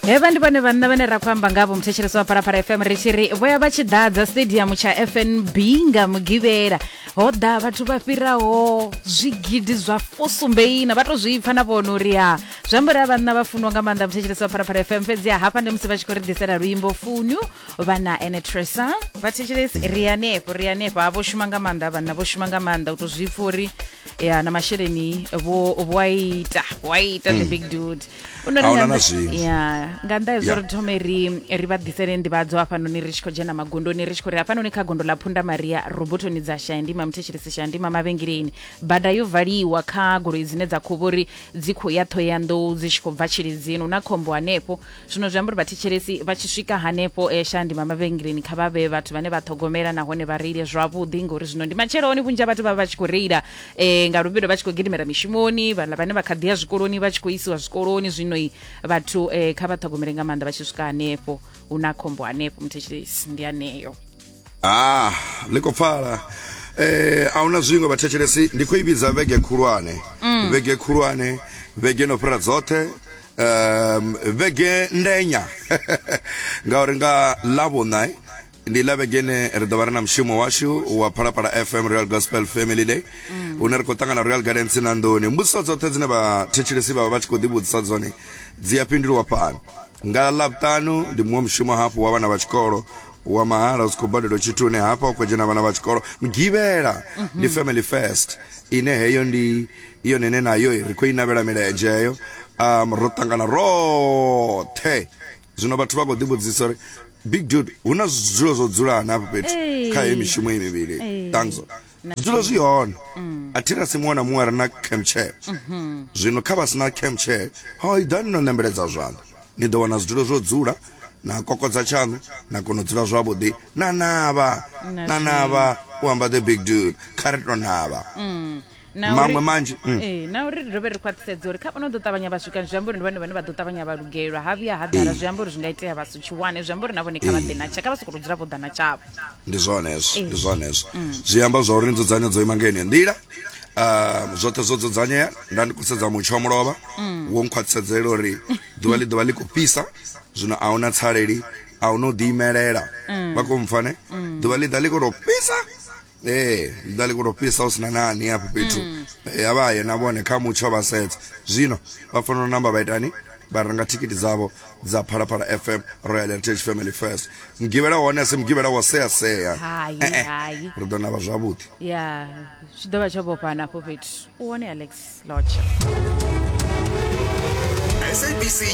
hevha ndi vhone vhanna vhane ra khou amba ngavho muthetshelesi wa phalaphala fm ri tshi ri vho ya vha tshi ḓadza stadium tsha fnb nga mugivhela ho ḓa vhathu vha fhiraho zwigidi zwa fusumbeina vha to zwi pfa na vhona uri ha zwi amba uri a vhanna vha funwa nga maanḓa muthetshelesi wa phalaphala fm fhedzi ha hafha ndi musi vha tshi khou ri ḓisela luimbo funyu vha na ene tresa vhathetshelesi ri hanefho ri hanefho ha vho shuma nga maanḓa vhanna vho shuma nga maanḓa u to zwi pfa uri ya na masheleni vho vho a ita vho a ita the big dude U nori A huna nga na nnḓa- zwiṅwe. ya nga nnḓa hezwo Yeah. ri thome ri ri vha ḓisele nḓivhadzo hafhanoni ri tshi khou dzhena magondoni ri tshi khou ri hafhanoni kha gondo ḽa phunda maria robotoni dza shandima muthetshelesi shandima mavhengeleni bada yo valiwa kha goloi dzine dza khou vhori dzi khou ya ṱhoyandou dzi tshi khou bva tshilidzini hu na khombo hanefho zwino zwi amba uri vhathetshelesi vha tshi swika hanefho e sha ndima mavhengeleni kha vha vhe vhathu vhane vha ṱhogomela nahone vha reile zwavhuḓi ngori zwino ndi matsheloni vhunzhi ha vhathu vha vha tshi khou reila um nga luvhilo vha tshi khou gidimela mishumoni vhala vhane vha kha ḓi ya zwikoloni vha tshi khou isiwa zwikoloni zwino i vhathu um kha vha ṱhogomele nga maanḓa vha tshi swika hanefho hu na khombo hanefho muthetshelesi ndi aneyo ah ḽi khou pfala eh a huna zwiṅwe vhathetshelesi ndi khou i vhidza vhege khulwane mm. vhege khulwane vhege no fhira dzoṱhe um vhege ndenya ngauri nga lavhuna eh, ndi la vhege ine ri ḓo vha ri na mushumo washu wa phalaphala fm real gospel family day mm. une ri khou ṱangana royal gardens na nḓuni mbudziso dzoṱhe dzine vhathetshelesi vha vha vha tshi khou ḓivhudzisa dzone dzi a fhindulwa fhano nga ḽavhutanu ndi muṅwe mushumo hafhu wa vhana vha tshikolo wa mahala u si khou badela tshithu une hafha u khou dzhena vhana vha tshikolo mugivhela ndi mhm. family first ine heyo ndi i yone ine nayo ri khou i navhela milenzhe eyo um ro ṱangana roṱhe zwino vhathu vha khou ḓivhudzisa uri big dude hu na zwidzulo zwo dzulana hafho fhethu kha heyo mishumo i mivhili ṱangzo zwidzulo zwi hone mm. a thi na si muṅwe na muṅwe a re na campchair mm-hmm. zwino kha vha si na campchair ho i ḓani no nembeledza zwanḓa ni ḓo wana zwidzulo zwo dzula na kokodza tshaṋu na kona u dzula zwavhuḓi na navha na navha u amba the big dude kha ri to navha mm. maṅwe manzhi mm. ee na uri ri dovhe ri khwaṱhisedze uri kha vhano ḓo ṱavhanya vha swika zwi amba uri ndi vhane vhane vha ḓo ṱavhanya vha lugelwa ha vhuya ha ḓala zwi amba uri zwi nga itea vha si tshi wane zwi amba uri na vhone kha vha ḓe na tsha kha vha sokou dzula vho ḓa na tshavho ndi zwone hezwo ndi zwone hezwo mm. zwi amba zwa uri nzudzanyo dzo ima nga yeneyo nḓila um zwoṱhe zwo dzudzanyea nda ndi khou sedza mutsho wa mulovha mm. wo nkhwaṱhisedzela uri ḓuvha ḽi ḓuvha ḽi khou fhisa zwino a huna tsaleli a huna u ḓiimelela vha khou mpfane ḓuvha ḽi ḓa ḽi khou tou fhisa ee nda liko to fhisa hu sina nani hafho fhethu Eh, a vha ye na vhone kha mutsho vha sedza zwino vha fanela u namba vha itani vha renga thikiti dzavho dza phalaphala fm royal heritage family first mugivhela hone a si mugivhela wa sea sea Hai, Eh, eh. hai. ri ḓo navha zwavhuḓi ya zwi ḓo vha tsho vhofhana afho fhethu u wone alex lotsha sabc